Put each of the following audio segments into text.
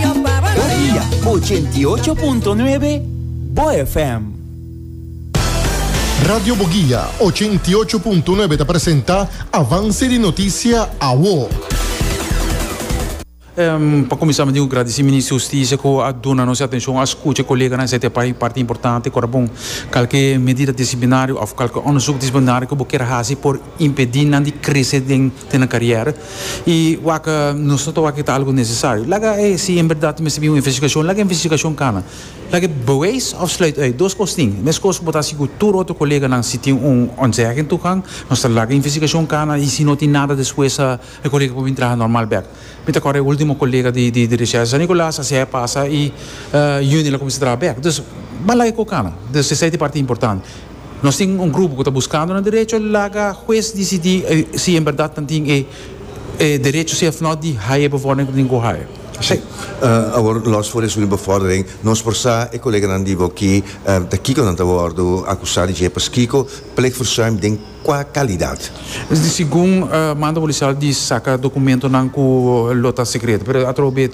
Cariya 88.9 Bo FM. Radio Boguia 88.9 ta presenta Avance di Noticia Awo. Pa kuminsá mi tin ku gradisí Minister di Hustisia ku a duna nos e atenshon, a skucha e koleganan esei ta e pai parti importante. Kora bon, kalke medida disiplinario òf kalke òndersuk disiplinario ku bo kier hasi por impedí nan di krese den. te nan karièra i wak nos no ta wak ta algu nesesario laga e si en berdad ta mester bin un investigashon laga e investigashon kana laga e beweis òf sluit ùit dos kos tin e mes kos ku bo ta sigur tur otro koleganan si tin un ontzèging toegang nos ta laga e investigashon kana i si no tin nada despues e kolega por bin traha nòrmal bèk. Mi ta kòrda e último kolega di Dirishèl di San Nikolas, asina e pasa i Euniel a kuminsá traha bèk. Dus ban laga e kokana. Dus esei ta e parti importante. Nos tin un grupo ku ta buskando nan derecho, laga hues disidí si en bèrdat nan tin e derecho sef nò di haña e befòrdering ku tin ku haña. Esei. Awor, lòs for esun di befòrdering, nos por sa e koleganan di bo ki ta kiko nan ta wòrdu akusá di dje. Paskiko? Plegverzuim den. Kua kalidat? Segun manda polisial di saka dokumentonan ku lo ta sekreto, pero atrobo be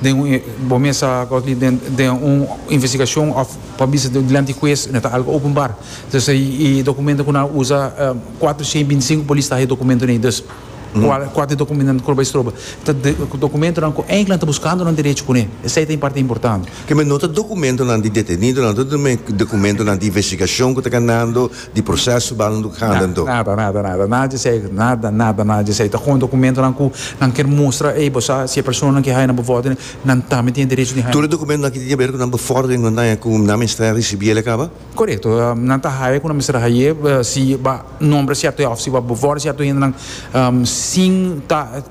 den un bo mes a kos di den un investigashon òf bo a bisa dilanti hues no ta algu openbar. Dus e dokumento ku nan a usa kuater shen binti sinku polis ta haña e dokumentonan ei. Dus kua ta e dokumentonan ku lo bai stroba? Ta dokumentonan ku enkla nan ta buskando nan derecho kuné. Esei ta e parti importante. Ke men no ta dokumentonan di detenidonan, no ta dokumentonan di investigashon ku ta ganando, di proseso banan do kanda en do. Nada, nada, nada, nada di esei, nada, nada, nada di esei. Ta kon dokumentonan ku nan kier mustra, ey, bo sa si e personanan ke haya nan bevordering, nan tambe tin e derecho di haya nan. Tur e dokumentonan ke tin ke ber ku nan bevordering nan ta haya ku nan mester risibi el e kaba? Korekto, nan ta haya ku nan mester haye si bo a nombra sierto hende òf si bo a bevòrda sierto hendenan sin ta.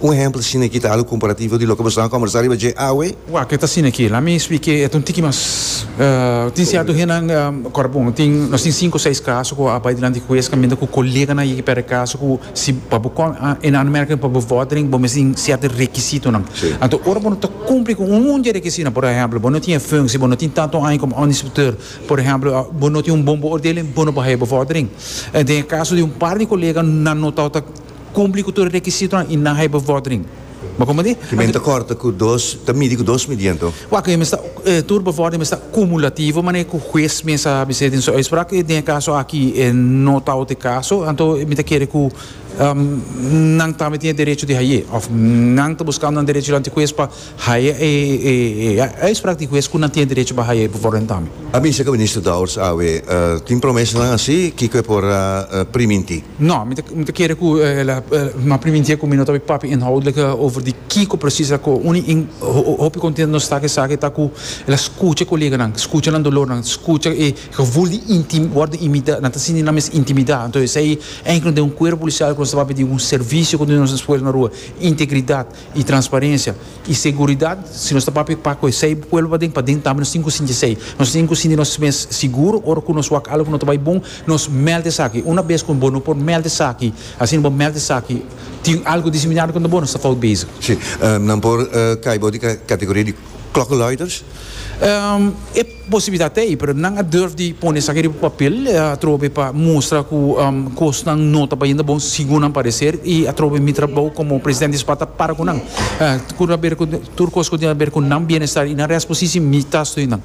Un ehempel sin e kita alu komparativo di loke boso a kòmbersá riba dje awe. Wak, e ta sin aki. La mi esplika e, e ta un tiki mas. Tin sierto hennan, kòrda bon, tin, nos tin sinku, seis kaso ku a bai dilanti di hues kaminda ku koleganan yeki pèrdè kaso ku si pa bo kòn, en aanmerking pa bo vòrdering bo mester tin sierto rekisitonan. Anto ora bo no ta kumpli ku un dje rekisitonan, por ehempel, bo no tin e funsi, bo no tin tantu aña komo òndersinspekteur, por ehempel, bo no tin un bon beoordeling, bo no por haya bo vòrdering. Den e kaso di un par di kolega nan notá. Cumpli cu tur e requisitonan y nan hay bevordering. Bo con madi? Ki men ta corta cu dos, ta midi cu dos midiento. Waak, e mester, tur bevordering mester cumulativo, manera cu huez mes a bisé den su uitspraak, cu den e caso aki e no tau t'e caso, anto mi ta kere cu nan tambe tin e derecho di haye, of nan ta buscando nan derechonan t'e huez pa. Haya e uitspraak di hues ku nan tin e derecho pa haya e bevoordendamme. A bisa ku Minister Dowers awe tin promesanan asi, kiko e por a priminti? No, mi ta kere ku ela m'a priminti ku mi no ta bin papia inhoudlik over di kiko presis a kohe. Uni hopi kontentu nos ta ku esaki ta ku ela skucha e koleganan, skucha nan dolornan, skucha e gevoel di wòrdu intimida, nan ta sinti nan mes intimida. Anto esei enkele den un kuerpo polisial ku nos ta papia di un servisio ku nos na spoel na rua, integridat. y transparencia y seguridad si nos ta papia pa cu esey pueblo paden paden tambe nos tin cu sinti esey nos tin cu sinti nos mes seguro ora cu nos wak algo no ta bay bon nos meld esaki una bes cu bo no por meld esaki asina bo meld esaki tin algo diseminado contra bo nos ta fout bezig. Si nan por cay bo di categoria di klokkenluiders? E Posibilidat ta ei, pero nan a durf di pone esaki riba papel atrobe pa mustra ku kosnan no ta bayendo bon segun nan pareser i atrobe mi trabou komo presidente di SPAT ta para ku nan. Ku ta ber ku tur kos ku tin aber ku nan bienestar i nan rèsposisi mi ta stoi nan.